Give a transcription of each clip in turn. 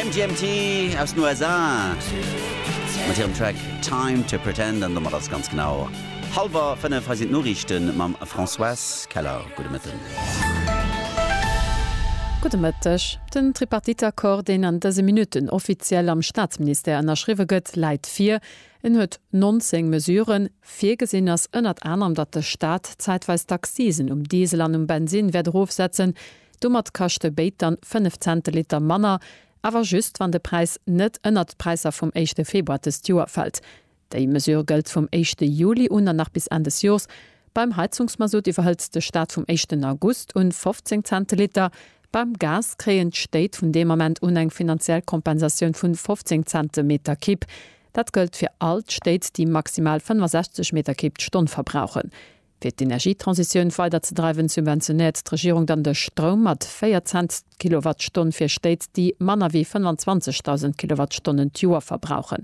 MGMT aus den USA mat hirem Track Time to Pretend. An domat ass ganz genau hallwer 5. Hei sinn d'Noriichte mam Françoise Keller. Gudde Mëtten. Gudde Mëtteg. Den Tripartite-Accord, deen an dëse Minutten offiziell am Staatsministère ënnerschriwwe gëtt, läit vir. En huet 19 Mesuren. Virgesinn ass ënnert anerem, datt de Staat zäitweis d'Accisen um Diesel an um Bensinn wäert erofsetzen. Domat kaschte béid dann 5 Zenteliter manner, awer just wann de Präis net ënnert d'Präisser vum éischte Februar dëst Joer fält. Déi Mesure gëllt vum éischte Juli un an nach bis Enn des Joers. Beim Heizungsmasutt iwwerhëlt de Staat vum éischten August un 15 Zenteliter. Beim Gas kréien d'Stéit vun deem Ament un eng finanziell Kompensatioun vu 15 Cente Meter Kipp. Dat gëllt fir all d'Stéit, déi maximal 65 Meter Kipp d'Stonn verbrauchen. Fir d'Energietransitioun weiderzedreiwen, subventionéiert d'Regierung dann de Stroum mat 4 Cent d'Kilowattstonn fir Stéit, déi manner wéi 25.000 Kilowattstonnen d'Joer verbrauchen.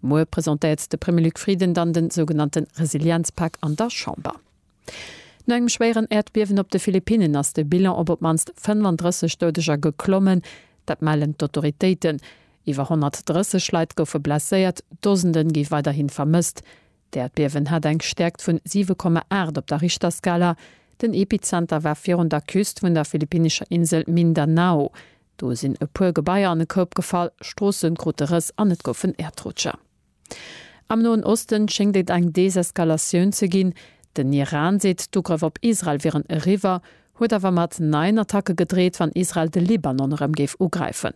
Muer presentéiert de Premier Luc Frieden dann de sougenannte Resilienzpak an der Chamber. No engem schwéieren Äerdbiewen op de Philippinnen ass de Bilan op op d'mannst 35 Doudeger geklommen. Dat mellen d'Autoritéiten. Iwwer 130 Leit goufe blesséiert, Dosende gi weiderhi vermësst. D'Äerdbiewen hat eng Stäerkt vun 7,8 op der Richterskala. Den Epizenter war virun der Küst vun der philippinnescher Insel Mindanao. Do sinn e puer Gebaier an e Koup gefall, Stroosse krute Rëss an et goufen Äerdrutscher. Am Noen Osten schéngt et eng Deseskalatioun ze ginn. Den Iran seet, d'Ugrëff op Israel wieren eriwwer, huet awer mat neien Attacke gedreet, wann Israel de Libanon erëm géif ugräifen.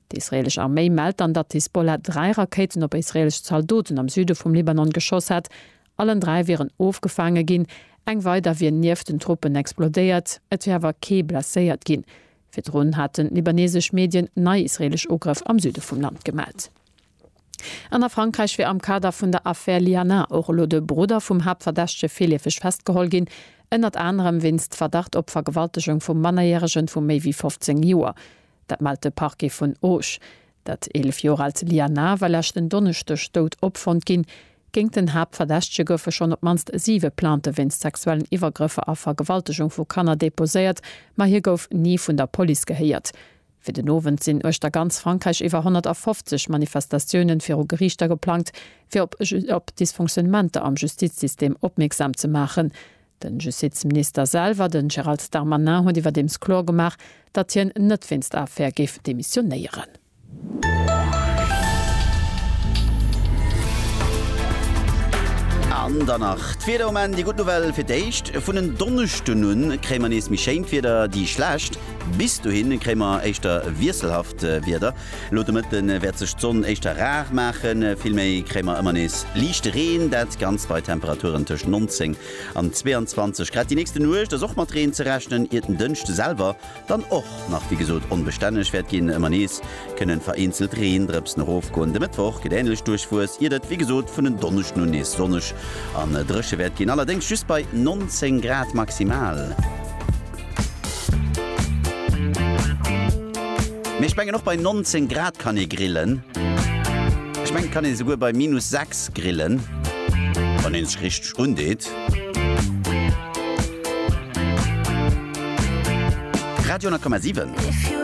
D'israeelesch Arméi mellt dann, datt d'Hisbollah dräi Rakéiten op israeelesch Zaldoten am Süde vum Libanon geschoss hätt. Allen dräi wieren ofgefaange ginn, eng weider wier nieft den Truppen explodéiert. Et wier awer kee blesséiert ginn. Virdrun haten libaneesesch Medien nei israeelesch Ugrëff am Süde vum Land gemellt. An a Frankräich wier am Kader vun der Affär Liana och elo de Brudder vum Haaptverdächtege virliefeg festgeholl ginn, ënnert anerem wéinst Verdacht op Vergewaltegung vum Mannerjäregen vu méi wéi 15 Joer. Dat mellt de Parquet vun Auch. Dat 11 Joer aalt Liana war leschten Donneschdeg dout opfonnt ginn. Géingt den Haaptverdächtege goufe schonn op d'mannst siwe Plainte wéinst sexuellen Iwwergrëffer a Vergewaltegung vu Kanner deposéiert, ma hie gouf ni vun der Police gehéiert. Fir den Owend sinn uechter ganz Frankräich iwwer 150 Manifestatioune viru Geriichter geplangt, fir op Dysfonctionnementer am Justizsystem opmierksam ze maachen. Den Justizminister selwer, den Gérald Darmanin huet iwwerdeems kloer gemaach, datt hien net wéinst der Affär géif demissionéieren. An dann nach d'Wieder um Enn. Déi gutt Nouvelle, Fir d'éischt vun en Donneschden un kréie mer nees méi schéint Wieder. Déi schlecht, Bis dohin kréie mer éischter wiesselhaft Wieder. Lo de Mëtte wäert sech d'Sonn éischter rar maachen, vill méi kréie mer ëmmer nees liichte Reen, dat Ganzt bei Temperaturen tëscht 19 an 22 Grad. Déi nächste Nuecht ass och mat Reen ze rechnen, iert den Dënschde selwer dann och nach wéi gesot onbestänneg wäert ginn. Ëmmer nees kënnen vereenzelt Reendrëpsen erofgoen. De Mëttwoch gëtt änlech duerchwuess, iert et wéi gesot vun en Donneschden un nees sonneg an dréche wäert ginn, allerdéngs just bei 19 Grad maximal. Mee ech mengen och bei 19 Grad kann ee grillen. Ech mengen kann een esouguer bei minus 6 grillen, wann een sech richteg undeet. Radio 10,7.